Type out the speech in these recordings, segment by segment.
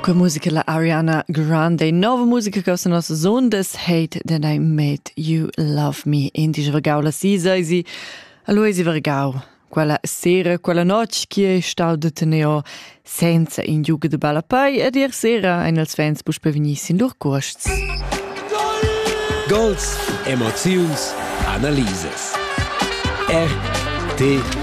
Che musica la Ariana Grande, nova musica che sa nos zon des hate that I made you love me in di vergau la sisa isi Aloisi vergau quella sera, quella noce che è stau de teneo senza in giuga de balla pai ed ier sera ein els fans puspe vegni sin lur cuosts. Gols, emoziuns, analisas. RTR.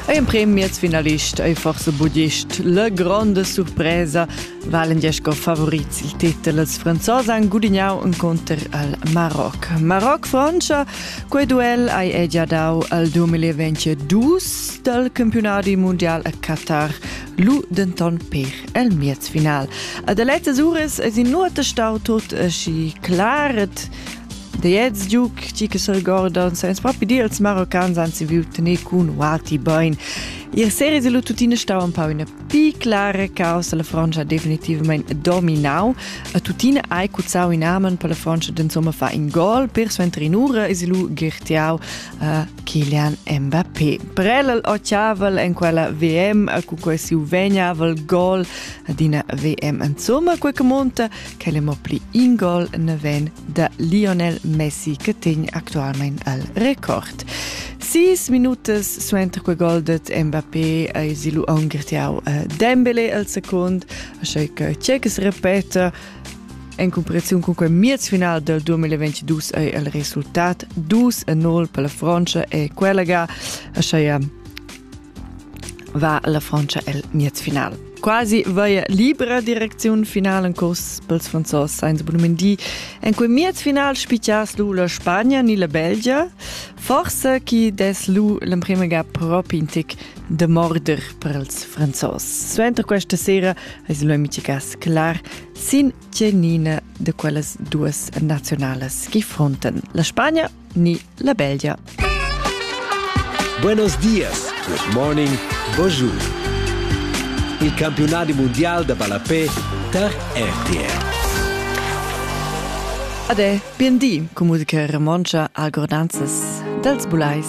Ein premiers finalist ei forse budist. La grande surpresa valen diesch go favorits il titel als Franzosi han gudignau incontr al Maroc. Maroc-Francia, quei duel ei è già dau al 2022 dal campionati mondial a Qatar. Lu denton per el miez final. Ad lezzas uras es in nuota stau tut aschi claret da jetzt giug ti che sorgordan sens propi dir als Maroccans anzi viu tener cun Wati Bain. Ihr series lu tuttina stau un pau ina pi clara causa la Francia definitivamente dominau. A tuttina hai cuzzau in amen per la Francia d'insomma fa in gol per suenter in ura es lu gertiau uh, Kilian Mbappé. Brellel ochavel en quella VM a cu quei siu vegnavel gol ad ina VM insomma quei che monta che le mo pli in gol ne ven da Lionel Messi che tegn actualmente al record. Sis minutas suenter quei gol dat Mbappé a isilu aungertiau a Dembele al secund, a che che Cechs repeta En cumparaziun cun quei miez final del 2022 ei il resultat dus e 0 per la Francia e quella ga, aschia va la Francia el miez final. Quasi vaia libra direcziun finale en curs pels franzos Sainz Brumendi. En quei miez final spicchias lu la Spagna ni la Belgia. Forse chi des lu l'emprema ga propi in tic da morder per ils Franzos. Suenter questa sera eis lo miticas clar sin tgenina de quellas duas nazionalas che fronten la Spagna ni la Belgia. Buenos dias, good morning, bonjour. Il campionati mondial da ballapé tar RTR. Ade, bien di, com musica romontscha a gordanzas dels bulais.